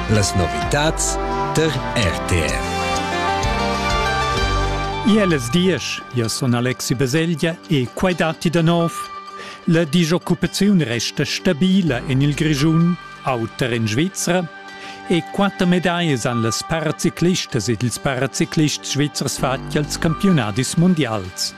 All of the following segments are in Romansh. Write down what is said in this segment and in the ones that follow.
Las novitads der RTR. Iellas diesch, io sun Alexi Baselgia e quai datti da nov. La disoccupaziun resta stabila en il Grischun, auter en Svizra, e quatter medaglie han las paraciclistas ed ils paraciclists svizzers fatg als campiunadis mundials.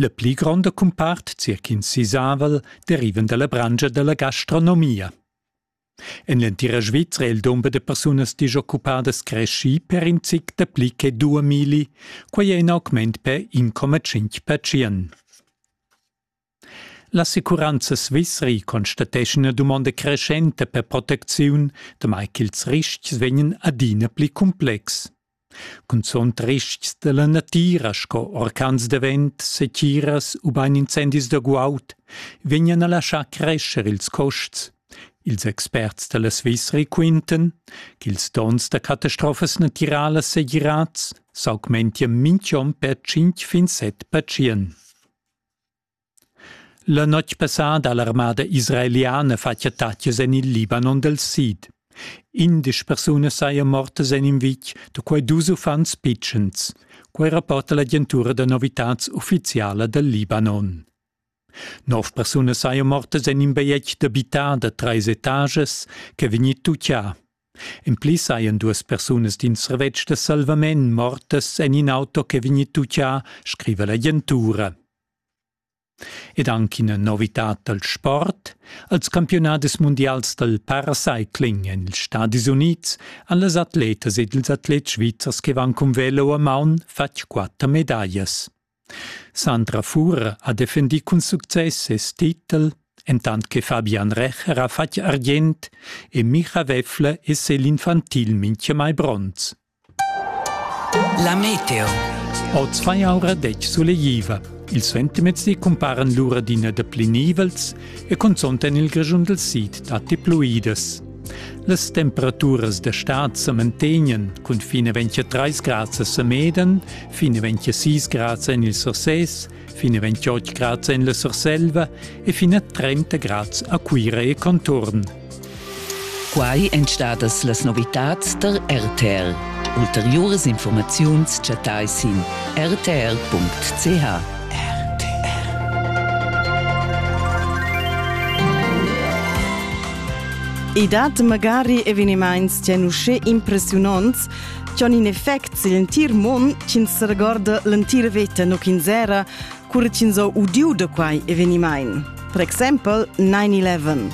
La pli gronda cumpart, circa in sisavel, derivan dalla branscha dalla gastronomia. En l'entira Svizra è il dumber da persunas disoccupadas creschì per in zic dapli che due milli, quai è in augment per 1,5 percent. L'assicuranza svizri constateschan ina dumonda creschenta per protecziun, damai ch'ils ristgs vegnan adina pli cumplex. Cunzunt ristgs dalla natira sco orcans da vent, setiras ubain incendis da guaud vegnan a laschar crescher ils custs. Ils experts dalla Svizri quintan ch'ils donns da catastrofas natiralas segirads s'augmentian mintg'onn per tschintg fin set pertschien. La notg passada ha l'armada israeliana fatg attaccs en il Libanon dal sid. Indesch persunas sajan mortas en in vitg, da quai dus uffants pitschens. Quai rapporta l'agentura da novitads uffiziala dal Libanon. Nov persunas sajan mortas en in bajetg d'abitar da trais etagas ch'è vegnì tutgià. En pli sajan duas persunas d'in servetsch da salvament mortas en in auto che vegni tutgà, scriva l'agentura. Ed anche ina novitad dal sport. Als campiunadis mundials dal paracycling en ils Stadis Unids han las atletas ed ils atlets svizzers che van cun velo a maun fatg quatter medaglias. Sandra Fuhr ha defendì cun success ses titel, entant che Fabian Recher ha fatg argient e Micha Wäffle e Céline Fantil mintgamai bronz. La meteo. Oz fa aura detg sulegliva. Il suentermezdi cumparan lura d'ina da pli nivels e cunzont en il Grischun dal sid datti pluidas. Las temperaturas d'estad sa mantegnan cun fin a 23 grads a Sameden, fin a 26 grads en il Surses, fin a 28 grads en la Surselva e fin a 30 grads a Cuira e contorn. Quai èn stadas las novitads tar RTL. Ulteriuras informaziuns chattai sin rtl.ch. I dat magari evenimaints ch'en uschè impressiunants ch'han in effect sil entir mund ch'ins regorda l'entira veta nu ch'ins era cura ch'ins ho udiu da quai evenimaint. Per exempel 9-11.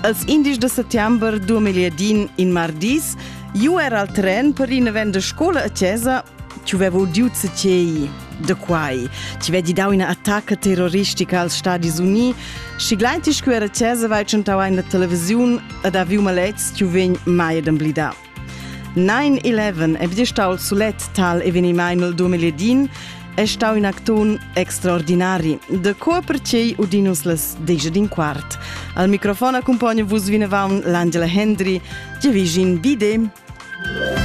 Als indies de settembre 2010, in mardis, io era al tren per in event de scola a Chiesa che aveva udiu cecei. da quai. Ti vedi dau ina attacca terroristica als Stadis Uni. Schiglein ti scu era tesa vai tschentau in la televisiun ed ha viu malets tu vegn mai d'emblidar. 9-11 è bdi stau sulet tal evenimaimel 2010 è stau in acton extraordinari. De co percei udinus les deja din quart. Al microfon accompagna vus vinavant l'Angela Hendry. Ti vigin vide!